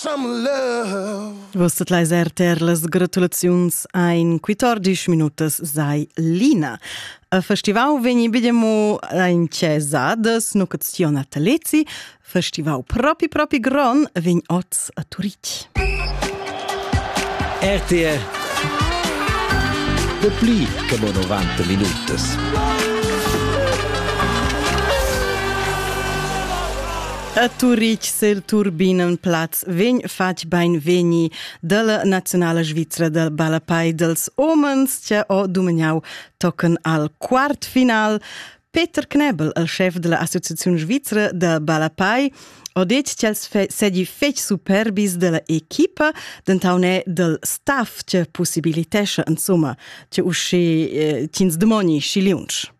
Vus tot leis RTR las gratulaziuns ein 14 minutas sai Lina. A festival vegni bidemo ein cesadas no cazion Atalezi, festival propi propi gron vegn oz a Turitg. RTR De pli che mo 90 minutas. A Turitg sel Turbinenplatz vegn fatg beinvegni dalla nazionala svizra da ballapei dels homens che ho dumegnau tochen al quartfinal. Peter Knebel, il chef della Associazione Svizra da Ballapei, ha detto che els sedi fetg superbis della equipa, denton è del staff che possibilitesce, insomma, che usci eh, cins demoni schi liunsch.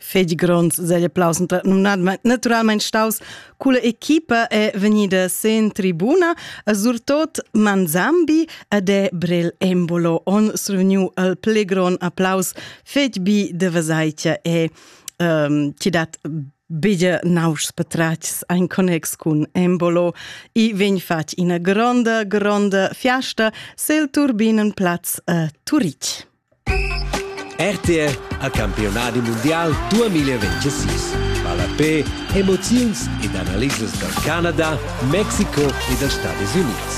fetg gronds segl applaus naturalmein staus culla equipa è vegnida sen tribuna surtot Manzambi ed è Brel Embolo on survegniu al pli gron applaus fetg bi de Vesaitia e um, ti dat bige nauschs petratgs ein connex cun Embolo i vegn fatg ina gronda gronda fiasta sel turbinen platz a Turitg. RTR al campiunadi mundial 2026 ballapè, emoziuns ed analisas dal Canada, Mexico e dals Stadis Unids.